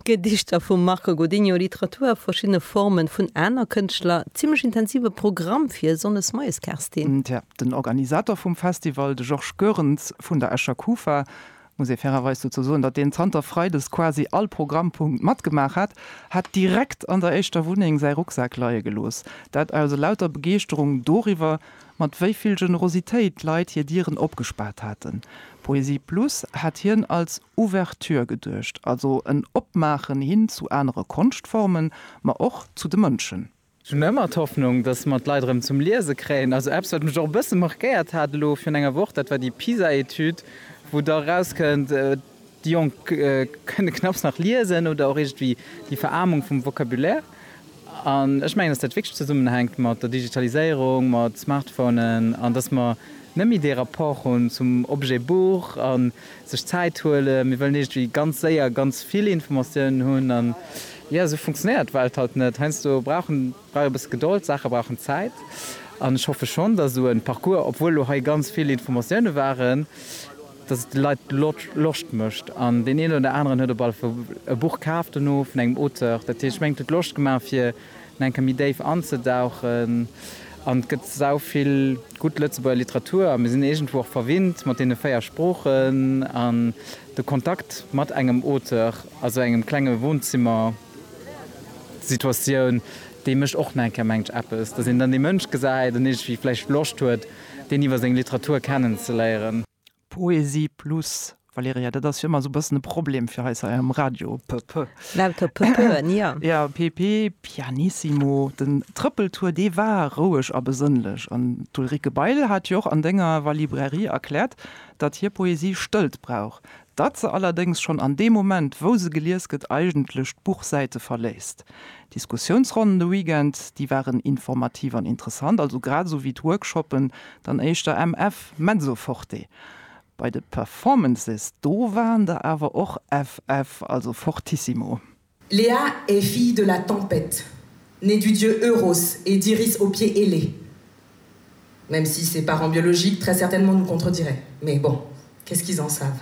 Gedichter vum Marco Godinho, Literatur a verschiddene Forme vun aner Kënschtler, zimmlech intensive Programm fir e Sonndes moies, Kerstin. Tja, den Organisator vum Festival, de Georges Goerens vun der Escher Kufa, muss ee fairerweis dozou soen, datt deen zanter Freides quasi all Programmpunkt matgemaach hat, hat direkt an der éischter Wunneng säi Rucksak leie gelooss. Dat aus elauter Begeeschterung doriwwer, mat wéi vill Generositéit d'Leit hir Dieren opgespaart haten. Poesie Plus hat hien als Ouverture geduecht, also en Opmaachen hin zu anere Konschtformen, ma och zu de Mënschen. Ech hunn ëmmer d'Hoffnung, datt mer d'Leit erëm zum Liese kréien. Also eppes, wat mech och e bësse markéiert hat elo virun enger Woch, dat war déi PISA-Etüd, wou da erauskënnt, Déi Jonk kënne knapps nach liesen oder och iergendwéi déi Veraarmung vum Vocabulaire. An ech mengen, dass dat wierklech zesummenhänkt mat der Digitaliséierung, mat Smartphonen an dass mer net méi dee Rapport hunn zum Objet Buch a sech Zäit huelen. Mir wëllen iergendwéi ganz séier ganz vill Informatiounen hunn an, jo, esou funktionéiert d'Welt halt net. Heiansdo brauch e bësse Gedold, d'Saache brauchen Zäit an ech hoffe schonn, dass esou e Parcours, obwuel elo hei ganz vill Informatiounen waren, dass et de Leit Loscht mécht an deen een oder aneren huet op alle Fall e Buch kaf dono vun engem Auteur. Dat heescht, meng et huet Loscht gemaach fir no eng Kéier méi déif anzedauchen an et gëtt sau vill gutt Lëtzebuerger Literatur a mir sinn iergendwou och verwinnt mat deene véier Sproochen an de Kontakt mat engem Auteur a sou engem klenge Wohnzimmer-Situatioun, déi mécht och no eng Kéier, mengen ech, eppes, dass een dann dee Mënsch gesäit an iergendwéi vläicht Loscht huet deen iwwer seng Literatur kennenzeléieren. Poesie plus, Valerija, dat ass jo ëmmer esou e bëssen e Problem fir eis hei am Radio. P, p. Lauter p, p, ja. Ja, p, p, pianissimo. Den Trëppeltour, dee war roueg a besënnlech. An d'Ulrike Bail hat jo och an denger Wa Librairie erkläert, datt hir Poesie Stëllt brauch, datt se allerdéngs schonn an deem Moment, wou se gelies gëtt, eigentlech d'Buchsäite verléisst. Diskussiounsronnen de Weekend, déi waren informativ an interessant, also grad esou wéi d'Workshoppen dann éischter MF, mezzo forte. Bei de Performances, do waren der awer och FF, also fortissimo. Lea est fille de la tempête, née du dieu Euros et d'Iris aux pieds ailés, même si ses parents biologiques très certainement nous contrediraient, mais bon, qu'est-ce qu'ils en savent?